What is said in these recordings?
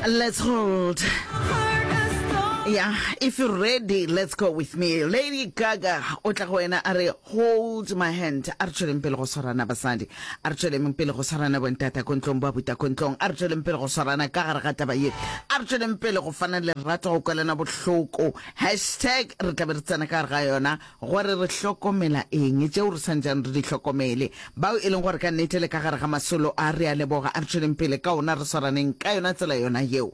Let's hold. Yeah, if you're ready, let's go with me. Lady Gaga, o tla go wena a re hold my hand. A re tšweleng pele go swarana basadi. A re tšweleng pele go swarana bontata ko ntlong ba buta ko ntlong. A re tšweleng pele go swarana ka gare ga taba ye. A re tšweleng pele go fana lerato go kwelana bohloko. Hashtag re tla be re tsena ka gare ga yona. Gore re hlokomela eng tšeo re sa ntšang re di hlokomele, bao e leng gore ka nnete le ka gare ga masolo a? Re a leboga, a re tšweleng pele ka ona, re swaraneng ka yona tsela yona yeo.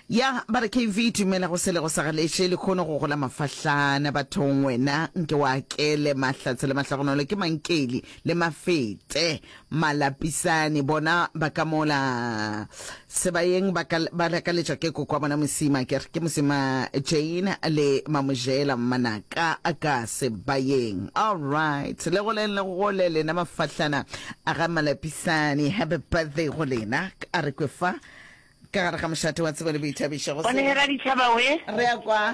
Ya ba re, KV, dumela go sele go sa galeše, lehono go gola mafahlana bathong, wena nke o akele mahlatse le mahlogonolo, ke mankeli le mafete. Malapisane bona ba ka mola sebayeng ba, ka, ba lakaletšwa ke koko wa bona Mosima, ke re ke Mosima Jane le Mamojela Mmanaka ka sebayeng. All right, le goleng le gole lena mafahlana a ga Malapisane. Happy birthday go lena, a re kwe fa ka gare ga mošate wa tsebo le boithabišo go Bonehela ditšhaba we. Re ya kwa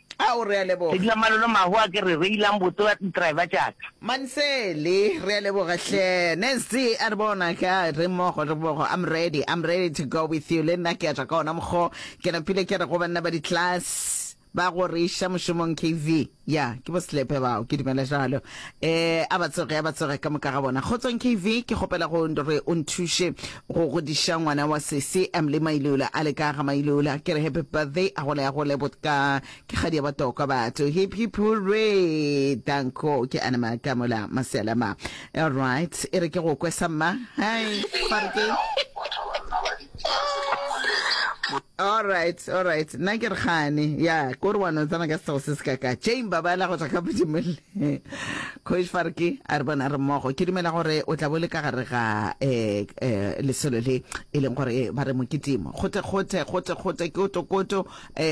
Ao, re a leboga. Sedila malolo mahu a ke re reilang botse wa driver tšaka. Mansele, re a leboga hle. Nasty, a re bona ka re mmogo re mmogo I'm ready, I'm ready to go with you le nna ke a tšwa ka ona mokgo. Ke napile ke re go banna ba di-class ba go re iša mošomong KV. Ya, ke bo Selepe bao, ke dumela jalo. Eh, a ba tsoge, a ba tsoge ka moka ga bona. Kgotsong KV, ke kgopela go re o nthuše Go godiša ngwana wa sesi Emily Mailola a le ka ga Mailola ke re happy birthday a gole a gole botka ke kgadi ya batokwa batho hip hip hooray danko ke ana ma ka mola masela ma all right e re ke go kwesa mma hai all right all right nna ke re gane ya ko re wa no tsana ka sego se se ka ka jane babala go tla ka bodimolle Kgoši Farki a re bona re mmogo. Ke dumela gore o tla bo le ka gare ga lesolo le e leng gore ba re mokitimo. Gote, gote, gote, gote, koto, koto,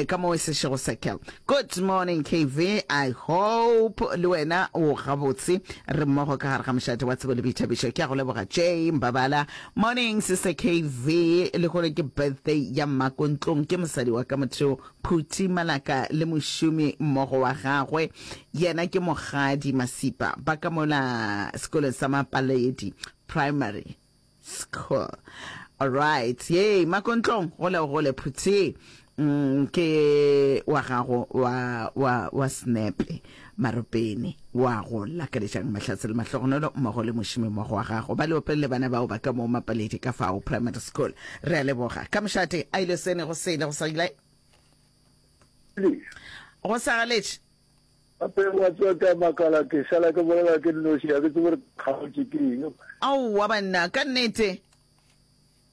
ka mo e sešego circle. Good morning KV, I hope le wena o gabotse re mmogo ka gare ga mošate wa tsebo le boithabišo. Ke a go leboga Jay Mbabala. Morning sister KV, le gore ke birthday ya mmakontlong ke mosadi wa ka motheo Phuti Malaka le mošomi mmogo wa gagwe, yena ke Mokgadi Masipa, ba ka mola sekolong sa Mapaledi Primary School. Alright, yey Makontlong, gole o gole Phuti. Mm, ke wa gago wa, wa, wa snepe. Maropeng, o a go lakalešang Mahlasela Mahlogonolo mmogo le mošemimmogo wa gago ba leopeng le bana bao ba ka moo Mapaledi ka fao Primary School. Re a leboga. Ka mošate a ile sene go sele go sa ile go sa galetše. Gape gwa tswaka makala ke šala ke bolela ke nnoši ga ke tsebe gore ke kgaotše ke eng. Aowa banna, ka nnete.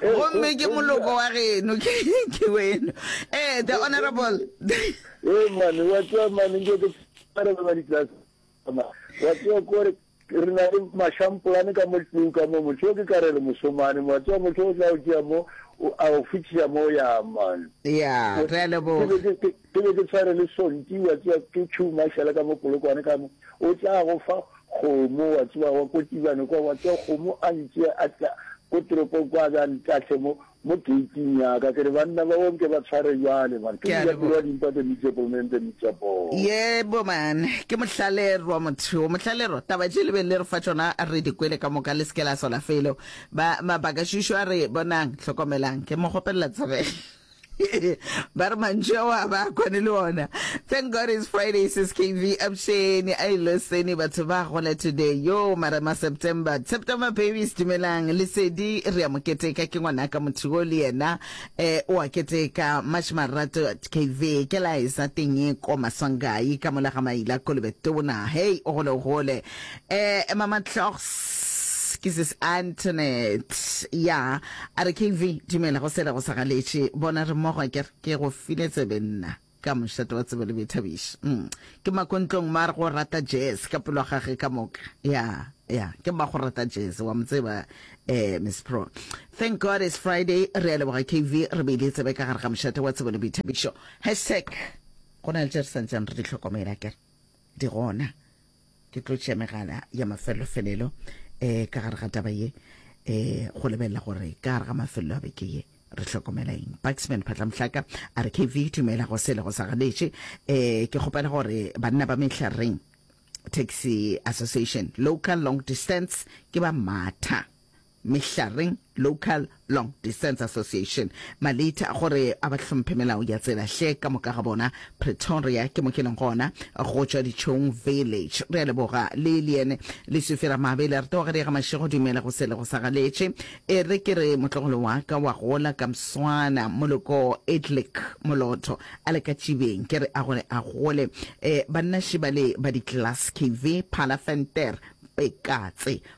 gomme ke moloko wa geno ke weno ee the honorable ee mane wa tswa mane nke ke arebe ba ditlase wa tswa kore re na le mashampolane ka mo tlung ka mo motho yo ke ka re re mosomane mo wa tswa motho o tla o tšea mo a o fitlhisa mo ya mane ya re a leboga Ke be ke tshwere le sonti, wa tseba, ke tšhou mašala ka mo Polokwane ka mo, o tla go fa kgomo, wa tseba, wa ko Tibane kwa, wa tseba, kgomo a ntšee a tla ko toropong kwa, a be a ntahle mo, mo gate-ing ya ka, ke re, banna bao nke ba tshware bjale, mara ke Ke a mojato wa leboga. dimpa, the meat of men, the meat of boar. Yebo, man. Ke mohlalerwa, motho yo. Mohlalerwa, taba tše le beng le re fa tšona re di kwele ka moka, le se ke la sola felo. Ba, Mabakašušu a re, Bonang, hlokomelang, ke mo kgopelela tsebe. ba re mantšu ao a ba kwane le ona thank god is friday sis kv absheni a iloseni batho ba gola today yo marema september september babies dumelang lesedi re ya moketeka ke ngwana ka motho yo le yena eh o a keteka march marato kv ke la e sa teng e ko maswangai ka mola ga maila kolobe tona hey o gole o gole eh mama tlhogs ke sis antonet ya A re, Kv, dumela go sela go sa galetše. Bona, re mmogo akere? Ke go file tsebe, nna, ka mošate wa tsebe le boithabiši. Um, ke makontlong, mar go rata jazz ka pelo ya gage ka moka. Ya, ya, ke mma go rata jazz, wa mo tseba, eh, Miss Pro. Thank God it's Friday. Re a leboga, Kv, re beile tsebe ka gare ga mošate wa tsebe le boithabišo. Hashtag, Go na le tše re sa ntšeng re di hlokomela, akere? Di gona. ke tlo tšea megala ya mafelelofelelo um ka gare ga taba ye um go lebelela gore ka gare ga mafelelo a beke ye re hlokomela eng baxman phatlamohlaka a re kv tumela go sele go sa ganetše um ke kgopela gore banna ba mehlareng taxi association local long distance ke ba matha Mehlareng Local Long Distance Association, Malita a gore a ba hlomphe melao ya tsela hle ka moka ga bona Pretoria ke mo ke leng gona go tšwa Dichong Village. Re a leboga le Liene Lesufi Ramabele re tloga re ya ga Mashego dumela go sele go sa galetše e re ke re motlogolo wa ka wa gola ka Mswana Moloko Edlick Molotho a le ka Tšibeng ke re a gore a gole e banna Shibale ba di Glass KV Phala Venter Pekatse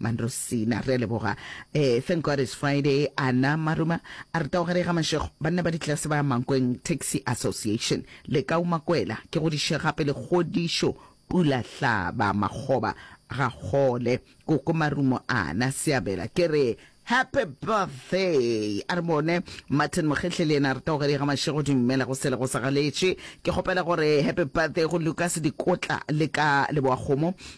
Mandrosina re a leboga eh thank God it's Friday ana maruma a re taogare ga mashego banna ba ditlase ba mankweng taxi association le ka umakwela ke go diše gape le kgodišo pula hlaba makgoba ga gole koko marumo ana seabela ke re Happy birthday a re bone Martin Mogehle le yena re taogare ga mashego dumela go sele go sa galetše ke kgopela gore happy birthday go Lucas Dikotla le ka leboa kgomo